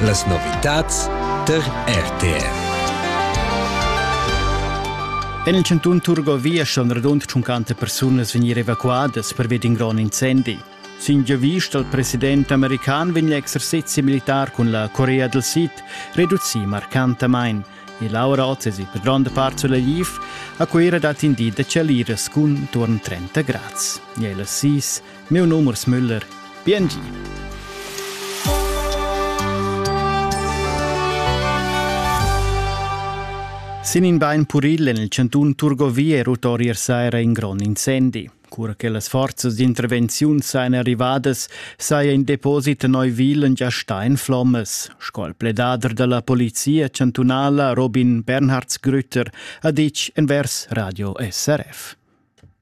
Las novitads tar RTV. En il cantun Turgovia ston radund 50 persunas vegnir evacuadas pervia d'in grond incendi. Sin giavisch dal president american vegn l'exercezi militar cun la Corea del Sid reducì marcantamain e Laura Ozzesi, per gronda part sulla Liv, a Cuira dat in di da chaliras cun turn 30 grads. E las sis Miu num es Müller. Piengi. Sin in bein puril en il cantun Turgovie è ulterior saira in grond incendi. Cura che las forzas d'intervenziun sajan arrivadas, saja in deposit Neuwilen già stà in flommas, sco il pledader da la polizia chantunala Robin Bernhardsgrütter ha ditg envers Radio SRF.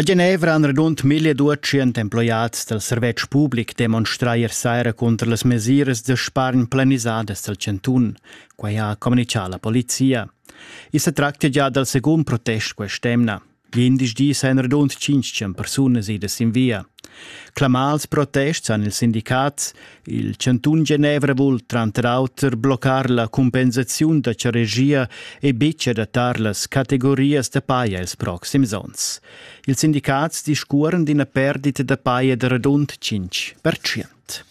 A Genevra han radund mille duatschient emploiads dal servetsch public demonstrà ier saira cunter las mesiras da spargn planisadas dal chantun. Quai ha communitgà la polizia. I sa tractia gia dal secund protest quest'emna. Glindis dis han radund 500 persunas idas sin via. Clamà als protests han ils sindicats, Il chantun Genevra vul tranter auter bloccar la compensaziun da charegia e betg adattar las categorias da paja ils proxims onns. Ils sindicats discuoran d'ina perdita da paja da radund 5%.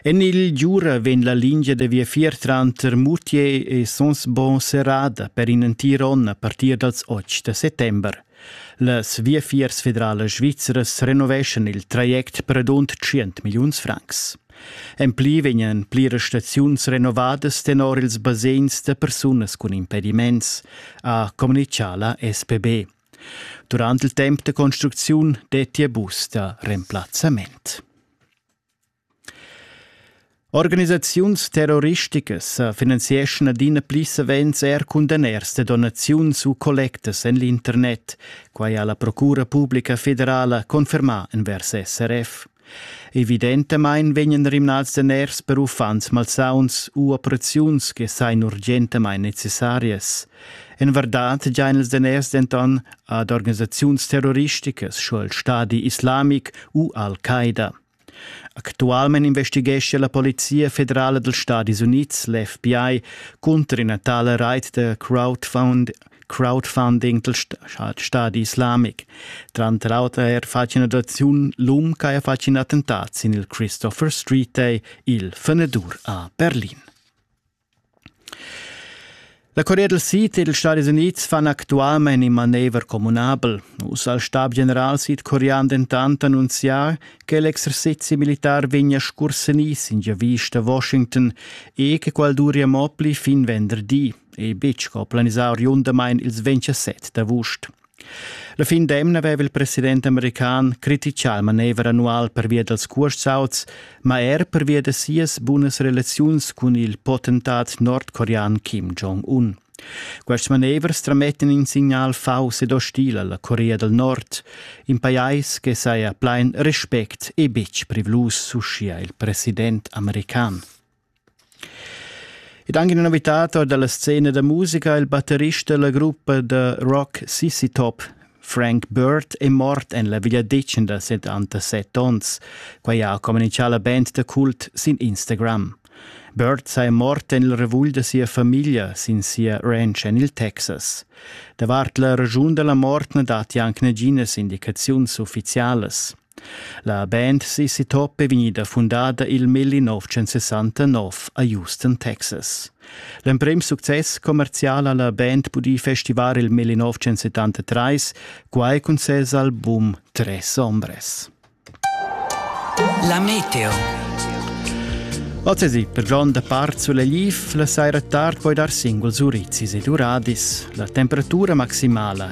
En il Giura vegn la lingia da viafier tranter Moutier e Sonsbon serrada per in entir onn a partir dals 8 da settember. Las viafiers federalas svizras renoveschan il traject per adont 100 milliuns francs. En pli vegnan pliras staziuns renovadas tenor ils basegns da persunas cun impediments, ha communitgà la SPB. Durant il temp da construcziun dettia bus da remplazzament. Organisaziuns terroristicas sa finanzieschan adina pli savens er cun daners da donaziuns u collectas en l'internet, quai ha la Procura publica federala confermà envers SRF. Evidentamain vegnan rimnads daners per uffants malsauns u operaziuns che sain urgentamain necessarias. En vardad giain ils daners denton ad organisaziuns terroristicas sco il Stadi islamic u Al-Qaida. Actualmein investighescha la Polizia federala dals Stadis Unids, l'FBI, cunter ina tala reit da crowdfund crowdfunding dal Stadi islamic. Tranter auter er fatg in'adattaziun l'um che ha fatg in attentat sin il Christopher Street, il Fenedur a Berlin. La Corea del Sid ed ils Stadis Unids fan actualmein in manever communabel. Uss ha il stabgeneral sidcorean dentant annunzià che l'exercizi militar vegnia scursenì sin giavisch da Washington e che quel duria mo pli fin venderdi e betg co planisà oriundamain ils 27 d'avust. La fin d'emna aveva il president american criticà il manever annual pervia dals cuorsauts, ma er pervia da sias bunas relaziuns cun il potentat nordcorean Kim Jong-un. Quest manever stramettan in signal faus ed ostil alla Corea del Nord, in pajais che saja plein respect e betg privlus, uschia il president american. Ed anche una novità dalla scena da musica, il batterista della gruppa da rock Sissy Top, Frank Bird, è mort en la vegliadetgna da 77 onns. Quai ha comunizià la band da cult sin Instagram. Bird sei mort en il revugl da sia famiglia sin sia ranch en il Texas. Davart la ragiun della mort na datti anche naginas indicaziuns ufficialas. La band Sissy Top è vegnida fundada il melli 1969 a Houston, Texas. L'emprim success commerzial ha la band pudì festivar il melli 1973, quai cun ses album Tres Ombres. La Meteo Ozzesi, per gronda part sull'Eliv, la saira tard puoi dar single Zurizis e Duradis. La temperatura maximala